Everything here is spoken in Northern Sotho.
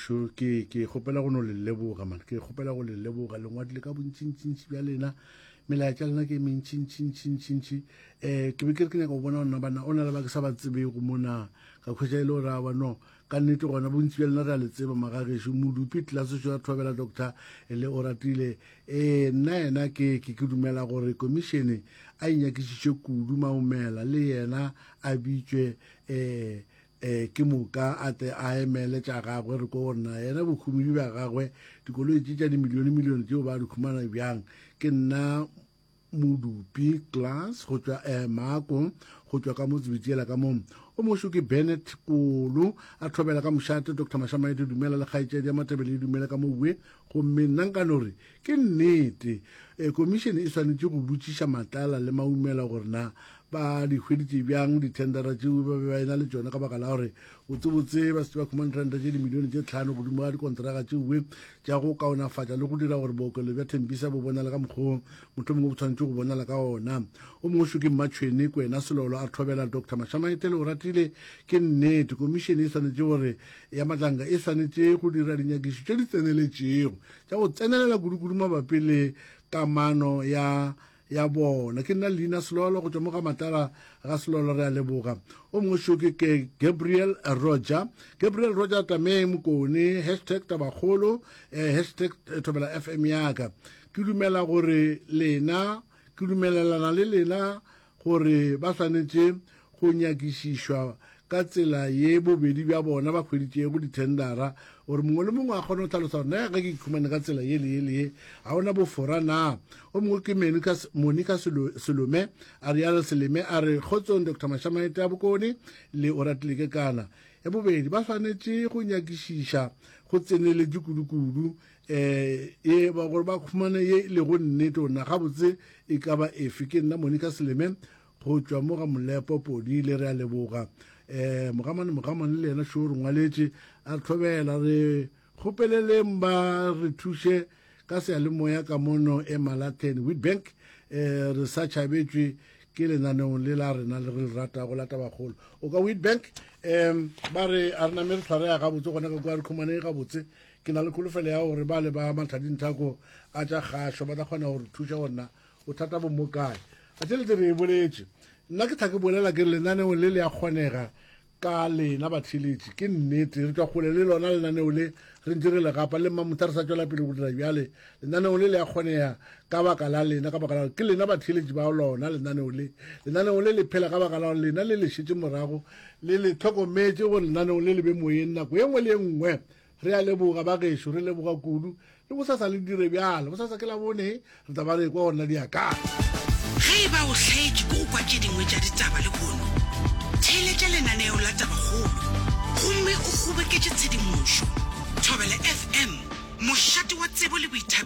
Sho, ke ke kgopela go no le leboga man ke kgopela go le leboga lengwadile ka bontšintšintši bja lena melaetša lena ke mentšintšintšintšintši um eh, ke be ke re ke nyaka go bona ona bana o na le ba ke sa ba tsebego mona ka kgwetša e le gore a bano ka nnete gona bontsi bja lena re a le tseba magagešo modupi tlaseso ya thobela doctor e le o ratile um nna yena ke ke ke dumela gore komišene a inyakišiše kudu maomela le yena a bitšwe um Ee, ke moka a tle a emele tša gagwe re ko go nna. Yena bohumedi bja gagwe, dikoloi tše tša dimilionemilione tšeo ba di humana bjang. Ke nna modupi, Klaas, go tšwa eh, Maako, go tšwa ka mo tsebitiela ka mo. O mošo ke Bennett, Kolo, a thobela ka mošate, Doctor Mashamaete, dumela, le kgaetšedi ya Matebele e dumele ka mo ue. Gomme nna nka no re, Ke nnete, Komišene e swanetše go botšiša Matlala le Maumela gore na ba di hweditše bjang dithendara tšeo ba be ba ena le tšone ka baka la gore botsebotse ba se ba khumane ranta tše dimilione tše tlhano godimo ga dikonteraka tšeoe tša go kaonafatša le go dira gore bookelo bja Thembisa bo bonale ka mokgwa motho mongwe bo tshwanetše go bonala ka ona. O mongwe šo ke Mmatšhwene Kwena Selolo a thobela Doctor Mashamaetele Oratile, Ke nnete, Komišene e swanetše gore ya Matlanga e swanetše go dira dinyakišišo tše di tseneletšego tša go tsenelela kudukudu mabapi le kamano ya ya bona ke nna leina selolo go tšwa mo ga matala ga selolo re a leboga o mongwe šoke ke gabriel roger gabriel roger tameng mokone hashtag tabakgolo eh, hashtag eh, thobela fm yaka ke dumela gore lena ke dumelelana le lena gore ba swanetše go nyakišišwa ka tsela ye bobedi bja bona ba hweditšego dithendara, gore mongwe le mongwe a kgone go hlalosa gore na ge ke ikhumane ka tsela ye le ye le ye, ga go na bofora na? O mongwe ke Monica, Monica Selome, Ariel Seleme a re, Kgotsong Doctor Mashamaete a Bokone le Oratile Kekana. Ya bobedi, ba swanetše go nyakišiša go tseneletše kudukudu ye ba gore ba khumane ye le go nnete ona gabotse e ka ba efe ke nna monica seleme go tšwa mo ga molepo podi le re a leboga um mogamane mogamane le yena šoo re ngwaletše a re tlhobela re kgopeleleng ba re thuše ka seyalemoya ka mono e malaten witbank um re sa tšhabetšwe ke lenaneong le la rena le re le ratago la tabakgolo o ka witbank um ba re a re name re tshwarea gabotse gona ka kua re khumane gabotse Ke na le kholofelo ya gore ba le ba mathadinthako a tša kgašo ba tla kgona go re thuša go nna bothata bo mo kae. A tšelete re e boletše. Nna ke tla ke bolela ke lenaneo le le a kgonega ka lena batheeletši. Ke nnete, re tšwa kgole le lona lenaneo le, re ntše re le gapa le mmamotha re sa tšwela pele go dira bjale. Lenaneo le le a kgonega ka baka la lena, ka baka la gore ke lena batheeletši ba lona lenaneo le. Lenaneo le le phela ka baka la gore lena le le šetše morago le le hlokometše gore lenaneo le le be moyeng nako ye nngwe le ye nngwe. Re a leboga bagešo, re leboga kudu. Le bosasa le dire bjalo. Bosasa ke Labone, re tla ba re ekwa go nna diakana. Ge e ba o hlaetše ke go kwa tše dingwe tša ditaba le pono, theeletša lenaneo la Tabakgolo gomme o kgoboketše tshedimošo. Thobela FM, mošate wa tsebo le boithabišo.